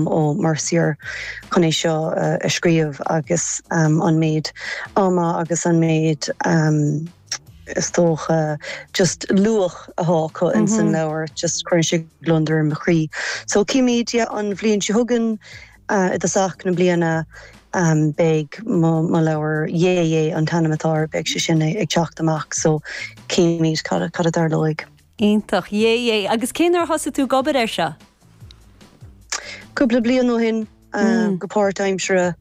Ó Mercier chun é seo a scríobh agus an méid ama agus an méid is dócha just luach athá acu ins an leabhar just cuireann sé gliondar ar mo chroí. So címíd yeah an bhliain seo chugainn i dtosach na bliana beidh mo leabhar Hé Hé an t-ainm atá air beidh sé sin ag teacht amach so címíd cad a dtarlóidh. Iontach. Hé Hé. Agus cén uair a thosaigh tú ag obair air seo? Cúpla bliain ó shin, go páirtaimseartha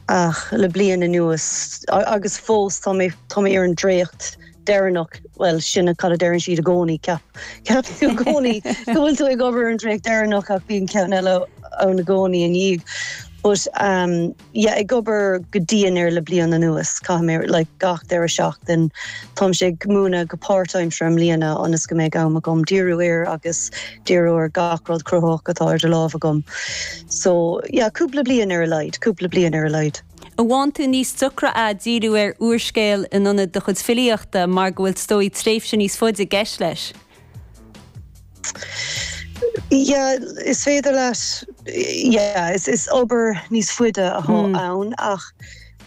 ach le bliain anuas agus fós tá mé tá mé ar an dréacht deireanach, bhuel sin cad a deireann siad i gcónaí ceap ceap tú i gcónaí go bhfuil tú ag obair ar an dréacht deireanach ach bíonn ceann eile ann i gcónaí ina dhiaidh but. yeah ag obair go dian air le bliain anuas. Caithfidh mé like gach deireadh seachtain. Táimse ag múineadh go páirtaimseartha i mbliana ionas go mbeidh am agam díriú air agus díriú ar gach rud cruthaitheach atá idir lámha agam. So yeah cúpla bliain ar a laghad. Cúpla bliain ar a laghad. An bhfaigheann tú níos deacra a' díriú ar úrscéal in ionad do chuid filíochta mar go bhfuil 's dóigh tréimhse níos faide i gceist leis? Yeah, is féidir leat, yeah, is is obair níos faide athá ann ach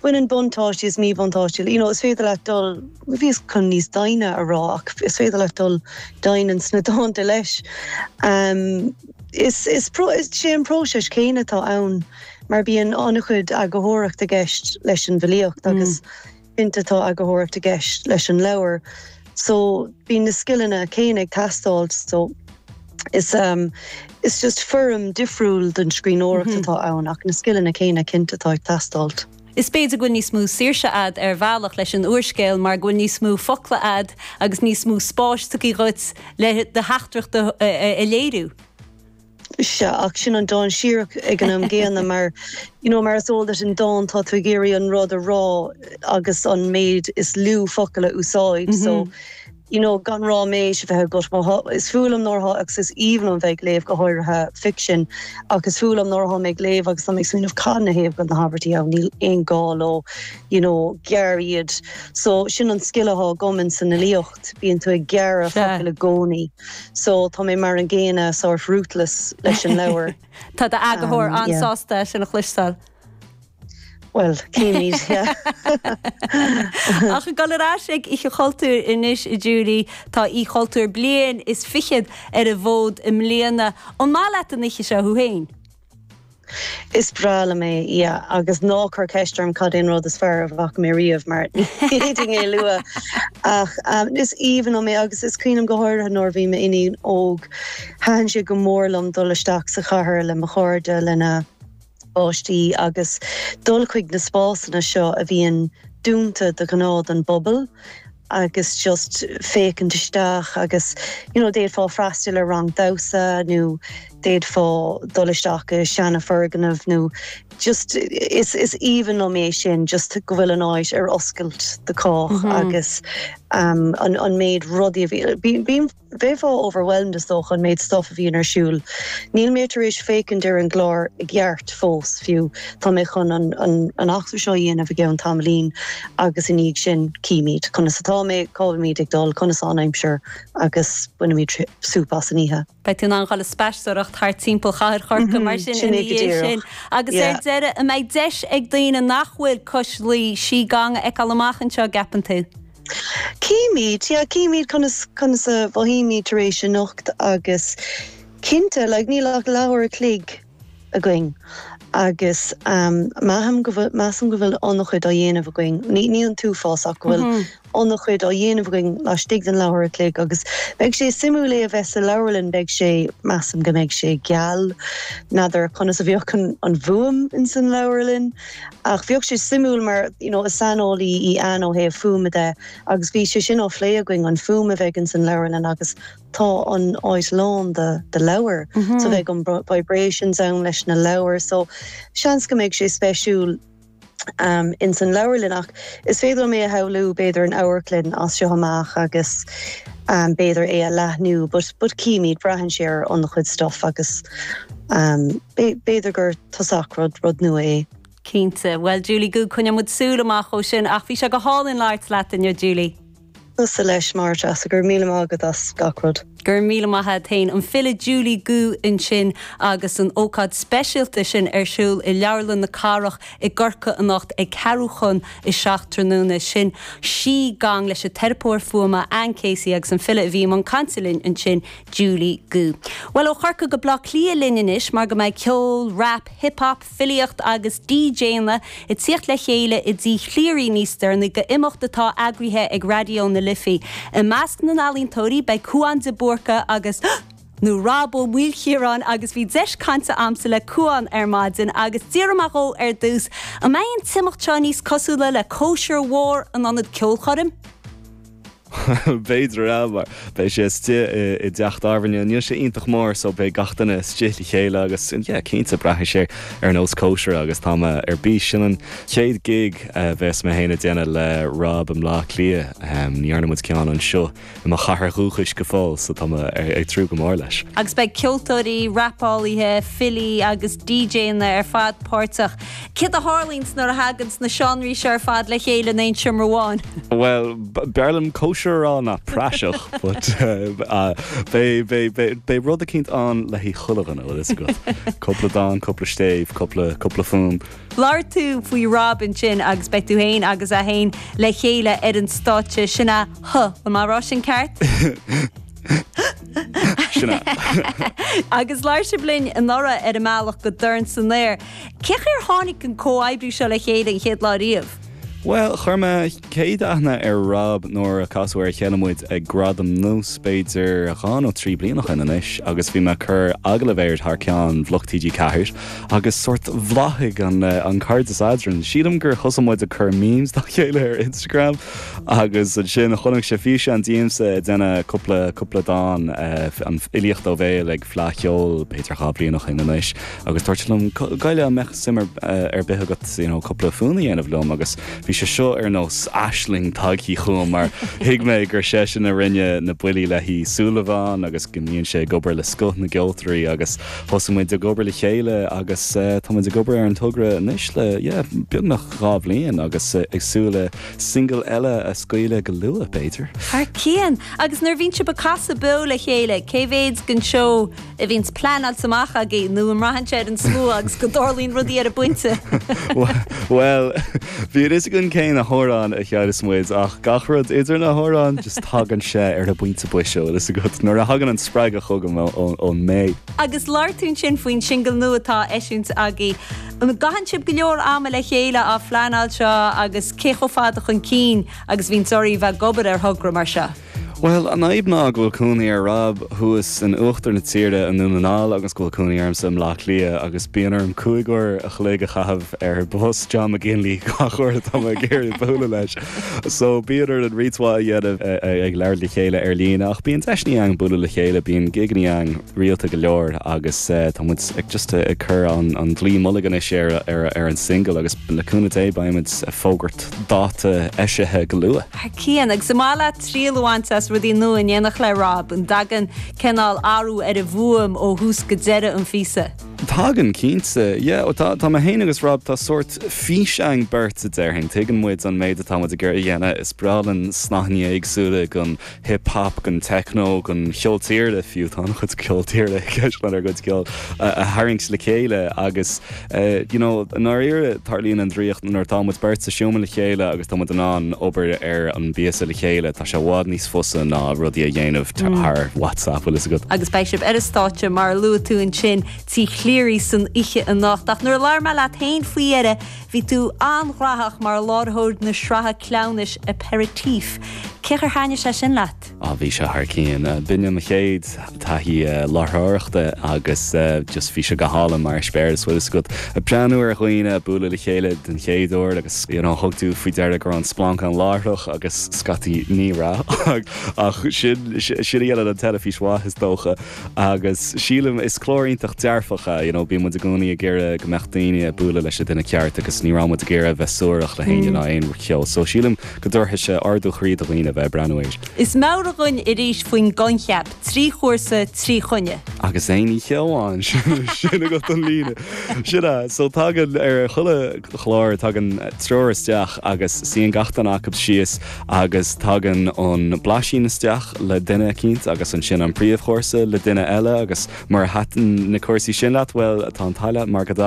baineann buntáistí is míbhuntáistí, you know, is féidir leat dul, bhíos chun níos doimhne a rá ach is féidir leat dul doimhin sna dánta leis. Ehm, is is pro- is sé an próiseas céanna atá ann mar bíonn an-chuid eagarthóireacht i gceist leis an bhfilíocht agus Cinnte tá eagarthóireacht i gceist leis an leabhar so bíonn na scileanna céanna ag teastáil so is ehm is just foirm difriúil den scríbhneoireacht atá ann ach na scileanna céanna cinnte atá ag teastáil. Is b'fhéidir go bhfuil níos mó saoirse a'd ar bhealach leis an úrscéal mar go bhfuil níos mó focla a'd agus níos mó spáis tugtha dhuit le do theachtaireacht a léiriú. Sea, ach sin an-dainséarach ag an am gcéanna mar, you know, mar is eol duit an dán tá tú ag iarraidh an rud a rá agus an méid is lú focal a úsáid so, you know, gan ráiméis a bheith agat mar tá, is fuath liom nuair atá agus is aoibhinn liom a bheith ag léamh go háirithe ficsean ach is fuath liom nuair atá mé ag léamh agus tá mé ag smaoineamh cad ina thaobh go bhfuil na habairtí ann, níl aon gá leo, you know, gearr iad. So, sin an scil atá agam in san fhilíocht. bíonn tú ag gearradh focail i gcónaí so tá mé mar an gcéanna, sórt ruthless leis an leabhar. Tá do eagarthóir an-sásta sin a chloisteáil. Bhuel, címid, yeah. Ach ag dul ar ais ag Oíche Chultúir anois, a Julie, tá Oích' Chultúir bliain is fichead ar an bhfód i mbliana. An maith leat an oíche seo thú féin? Is breá liom é, yeah. Agus ná cuir ceist orm cad é an rud is fearr a bhfaca mé riamh mar ní fhéadfainn é a lua. Ach is aoibhinn liom é agus is cuimhin liom go háirithe nuair a bhí m'iníon óg, thaitin sé go mór liom dul isteach sa chathair le mo chairde, lena bpáistí agus dul chuig na spásanna seo a bhíonn dúnta de ghnáth don bpobal. agus just féachaint isteach agus you know d'fhéadfá freastal ar rang damhsa nó d'fhéadfá dul isteach i seanafhoirgneamh nó just is is aoibhinn liom é sin just go bhfuil an áit ar oscailt do chách agus um, an, an méid rudaí a bhí bím Bheifeá overwhelmed is dócha an méid stuff a bhíonn ar siúl. Níl mé tar éis féachaint ar an gclár i gceart fós fiú. Tá mé chun an eachtra seo a dhéanamh i gceann tamaillín agus ina dhiaidh sin cífimíd conas atáimid, cá bhfuilimíd ag dul, conas tá an aimsir agus bainfimíd sup as an oíche. Beidh tú in ann dul ag spaisteoireacht thart timpeall Chathair Chorcaí mar sin ina dhiaidh sin. Agus ar deireadh, an mbeidh deis ag daoine nach bhfuil Cois Laoi, Sí Gong a fheiceáil amach anseo an gceapann tú? Cífimid, yeah, cífimid conas a mhothaímid tar éis anocht agus cinnte, like, níl ach leathuair a chloig againn agus measaim go bhfuil, measaim go bhfuil an-chuid á dhéanamh againn, ní, ní an t-uafás ach go bhfuil an-chuid á dhéanamh againn laistigh den leathuair a chloig agus beidh sé suimiúil é a bheith sa leabharlann, beidh sé, measaim go mbeidh sé geal, n'fheadar conas a bheadh an, an fhuaim in san leabharlann. Ach beidh sé suimiúil mar you know is saineolaí í Anne ó thaobh fuaime de agus bhí sé sin á phlé againn, an fuaim a bheidh ins an leabharlann agus tá an áit lán de de leabhair so beidh an vibrations ann leis na leabhair so seans go mbeidh sé speisiúil ehm ins an leabharlann ach is féidir liom é a shamhlú b'fhéidir in amharclann as seo amach agus ehm b'fhéidir é a leathnú but but cífimid, braitheann sé ar an-chuid stuff agus ehm b'fhéidir gur. Toisc gur rud, rud nua é. Cinnte. Bhuel Julie Goo coinneoidh muid súil amach dó sin ach bhí sé go hálainn labhairt leat inniu Julie. Tusa leis Máirt agus, go raibh míle maith agat as gach rud. Go raibh míle maith agat féin. An file Julie Goo ansin agus an ócáid speisialta sin ar siúl i Leabharlann na Cathrach i gCorcaigh anocht ag ceathrú chun a seacht tráthnóna. Sin Sí Gong leis an teiripeoir fuaime Anne Casey agus an file a bhí i mbun cainte linn ansin Julie Goo, Bhuel ó Chorcaigh go Baile Átha Cliath linn anois mar go mbeidh ceol, rap, hip hop, filíocht agus DJanna ag tíocht le chéile i dTí Chleary níos deireanaí do imeacht atá eagraithe ag Raidió na Life. I measc na n-ealaíontóirí beidh Cúán de Búrca nó Rob Ó Maoilchiaráin agus bhí deis cainte a'msa le Cúán ar maidin agus d'fhiafraigh mé dhó ar dtús an mbeidh an t-imeacht seo níos cosúla le cóisir mhór in ionad ceolchoirm? B'fhéidir ea, mar beidh sé istigh i dteach tábhairne. Níl sé iontach mór so beidh gach duine istigh le chéile agus, yeah, cinnte, braithfidh sé ar nós cóisire agus tá mé ar bís. Sin an chéad gig a bheas mé féin a dhéanamh le Rob i mBleá Cliath. Ní dhearna muid ceann anseo i mo chathair dhúchais go fóill so tá mé ag tnúth go mór leis. Agus beidh ceoltóirí, rapálaithe, filí agus DJanna ar fad páirteach Cad a tharlaíonns nuair a thaganns na seánraí seo ar fad le chéile in aon seomra amháin? Bhuel, b'fhearr liom cóisir a rá ná praiseach, but beidh rud eicínt ann le haghaidh chuile dhuine, bhfuil fhios agat. Cúpla dán, cúpla stéibh, cúpla, cúpla fuaim. Labhair tú faoi Rob ansin agus beidh tú féin agus é féin le chéile ar an stáitse, sin a, huh, le mé a rá sin ceart? Sin é. Agus labhair sibh linn anuraidh ar an mbealach go Dorn san Aer. Cén chaoi ar tháinig an comhoibriú seo le chéile an chéad lá riamh? Bhuel, chuir mé céad aithne ar Rob nuair a casadh ar a chéile muid ag Gradaim Nós b'fhéidir dhá nó trí bliana ó shin anois agus bhí mé ag cur agallaimh air thar ceann Bhloc TG4 agus sórt bhláthaigh an cairdeas eadrainn. Sílim gur thosaigh muid ag cur memes dá chéile ar Instagram. Agus ansin chonaic sé físeán díomsa ag déanamh cúpla, cúpla dán, an fhilíocht ó bhéal ag Fleadh Cheoil, b'fhéidir dhá bhliain ó shin anois. Agus dúirt sé liom, Gabh i leith, an mbeadh suim ar, ar bith agat, you know, cúpla fonn a dhéanamh liom? Agus bhí sé seo ar nós aisling tagthaí chugam mar thuig mé gur seisean a rinne na buillí le haghaidh Súil Amháin agus go mbíonn sé ag obair le scoth na gceoltóirí agus thosaigh muid ag obair le chéile agus tá muid ag obair ar an togra anois le, yeah, beagnach dhá bhliain agus ag súil le Single eile a scaoileadh go luath, b'fhéidir? Thar cionn! Agus nuair a bhíonns sibh ag casadh beo le chéile, cé mhéid den seó a bhíonns pleanáilte amach agaibh nó an mbraitheann sé ar an slua agus go dtarlaíonn rudaí ar an bpointe? Bhuel, bíonn a fhios againn cén amhrán a chanfas muid ach gach rud idir na hamhráin, just tagann sé ar an bpointe boise, an bhfuil fhios agat, nuair a thagann an spreagadh chugam ón mBé. Agus labhair tú ansin faoin singil nua atá á eisiúint agaibh. An gcaitheann sibh go leor ama le chéile á phleanáil seo agus cé chomh fada chun cinn agus a bhíonns oraibh a bheith ag obair ar thogra mar seo? Bhuel, an fhadhb ná go bhfuil cónaí ar Rob thuas in uachtar na tíre i nDún na nGall agus go bhfuil cónaí ormsa i mBleá Cliath agus bíonn orm cúig uair an chloig a chaitheamh ar bhus John McGinley gach uair atá mé ag iarraidh bualadh leis. So bíonn orainn roinnt mhaith a dhéanamh ag labhairt le chéile ar líne ach bíonn deiseannaí ann bualadh le chéile, bíonn gigeannaí ann rialta go leor agus tá muid ag just ag cur an dlaoi mullaigh anois ar an single agus le cúnamh Dé beidh muid ag fógairt dáta eisithe go luath. A Chian, agus an maith leat triail a bhaint as rudaí nua in éineacht le Rob? An dtagann cineál athrú ar an bhfuaim ó thús go deireadh an phíosa? Tagann, cinnte. Yeah, ó tá, tá mé féin agus Rob, tá sórt fís againn beirt a déarfainn. Tuigeann muid an méid atá muid ag iarraidh a dhéanamh. Is breá linn snaithní éagsúla den hip hop, den techno, den cheol tíre fiú, tá an-chuid ceol tíre i gceist lenár gcuid ceoil, a tharraingt le chéile agus eh, you know, i ndáiríre tarlaíonn an draíocht nuair atá muid beirt sa seomra le chéile agus tá muid in ann obair ar an bpíosa le chéile. sé i bhfad níos fusa ná rudaí a dhéanamh thar WhatsApp, bhfuil fhios agat. Agus beidh sibh ar an stáitse, mar a luaigh tú, ansin Tí Chleary san oíche anocht. Ach nuair a labhair mé leat féin faoi dheireadh, bhí tú an-ghraitheach mar láithreoir na sraithe cleamhnais Aperitif. Cén chaoi ar thaitnigh sé sin leat? Á, bhí sé thar cionn. Ba in é mo chéad. taithí láithreoireachta agus just bhí sé go hálainn mar eispéireas, bhfuil fhios agat, ag breathnú ar dhaoine ag bualadh le chéile den chéad uair agus you know thug tú faoi deara go raibh an splanc ann láithreach agus scaití ní raibh ach sin, sin a dhéanann teilifís mhaith is dócha agus sílim, is clár iontach dearfach é, you know bíonn muid i gcónaí ag iarraidh go mbeadh daoine ag bualadh leis an duine ceart agus ní raibh muid ag iarraidh a bheith suarach le héinne ná aon cheo so sílim go dtabharfaidh sé ardú chroí do dhaoine a bheith ag breathnú air. Is meabhraigh dúinn arís faoin gcoincheap 'trí chúrsa, trí choinne'. agus aon oíche amháin, sin agat an líne. Sin é. So tagann, ar chuile chlár, tagann triúr isteach agus suíonn gach duine acu síos agus tagann an blaisín isteach le duine eicínt agus ansin an príomhchúrsa le duine eile agus mura thaitin na cúrsaí sin leat, bhuel, tá an t-ádh leat mar go dtagann.